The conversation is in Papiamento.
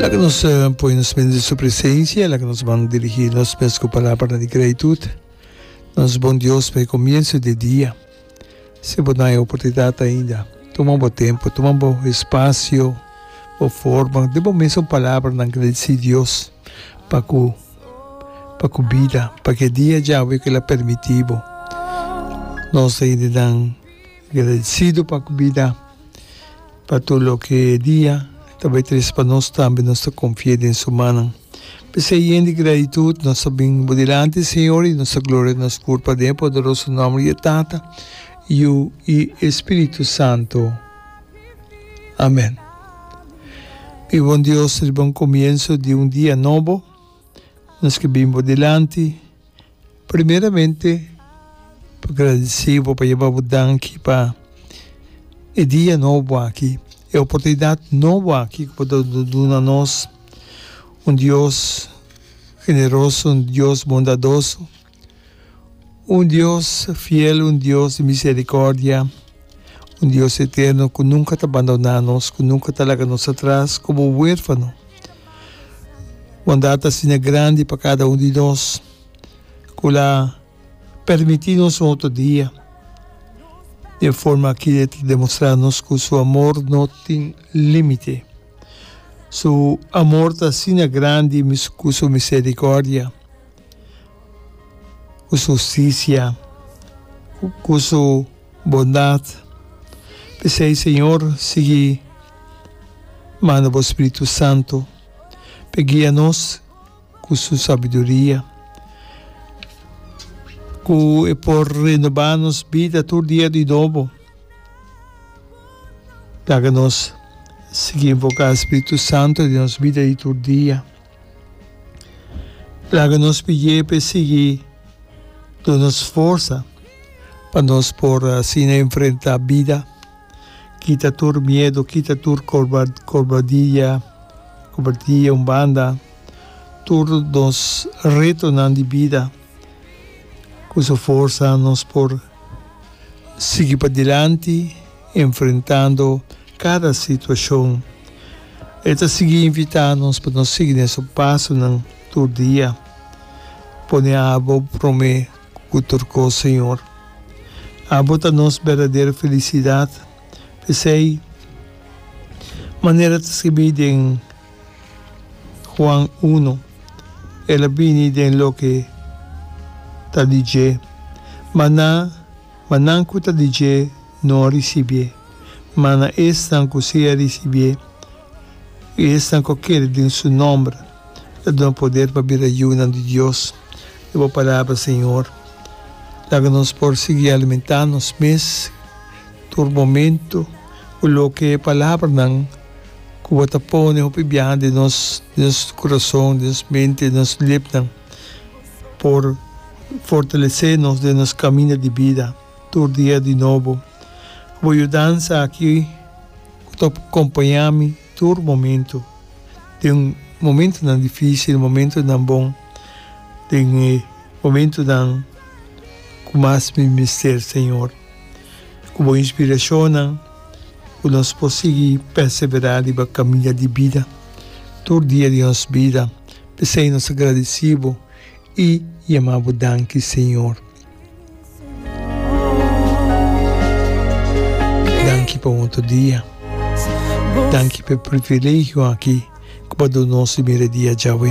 Laga nos poi nos mes di su presencia, laga nos ban dirigi nos mes cu palabra di gratitud. Nos bon Dios pa e comienzo di e dia. Si bo na e oportunidad ainda, tuma bo tempo, tuma bo espacio, bo forma di bo mes un palabra na agradeci Dios pa cu pa cu bida, pa cu e dia djawe cu el a permitibo. Nos ta yende nan. Agradecido pa cu bida pa tur loke e dia ta bay tres pa nos tambe nos ta confie den su mannan. P'esey yen di gratitud nos ta bin bo dilanti Señor y nos ta gloria nos pur paden e poderoso nomber di e Tata, Yu y e Spiritu Santo. Amen. Mi bon Dios riba un comienso di un dia nobo nos ke bin bo dilanti. Primeramente pa gradisi bo, pa yeba bo danki pa e dia nobo aki, e oportunidat nobo aki ku bo ta duna nos, un Dios generoso, un Dios bondadoso, un Dios fiel, un Dios di miserikordia, un Dios eterno ku nunka ta bandona nos, ku nunka ta laga nos atras komo werfano. Bondad ta asina grandi pa cada un di nos cu lo a permiti nos un otro dia den forma ki e ta demostra nos cu su amor no tin limite. Su amor ta asina grandi cu su misericordia, cu su justicia, cu su. Bondat. P'esei, Señor, sigui manda Bo Spiritu Santu p'e guia nos cu su sabiduria, cu e por renoba nos bida tur dia di nobo. Laga nos sigui invoca Spiritu Santu den nos bida di tur dia. Laga nos pidié p'e sigui duna nos forsa pa nos por asina enfrentá bida, kita tur miedu, kita tur kobardia, kobardia un banda, tur nos retonan di bida. Ku su forsa nos por sigui padilanti enfrentando kada situashon. E ta sigui invitá nos pa nos sigui den su pasonan tur dia. Pone abo promé ku tur kos, Señor. Abo ta nos berdadero felisidat. P'esei, manera ta skibi den Juan uno, el a bini den loke ta di dje. Maná. Ma nan ku ta di dje no a risibié, ma na esnan ku si a risibié, i esnan ku a kere den su nòmber, ta duna poder pa bira yunan di Dios. I bo palabra, Señor. Laga nos por sigui alimentá nos mes tur momentu ku loke e palabranan ku bo ta pone hopi biaha den nos kurason, den nos mente, den nos lipnan. por fortalesé nos den nos kaminda di bida tur dia di nobo. Bo yudansa aki ku ta kompañá mi tur momentu, den momentunan difísil, momentunan bon, den e momentunan ku mas mi mester, Señor. Ku bo inspirashonnan ku nos por sigui perseverá riba kaminda di bida tur dia di nos bida. P'esei nos ta gradicí bo i yamá bo danki, Señor. Danki pa un otro dia. Danki p'e privilegio aki ku bo a dun'o si mira e dia djawe.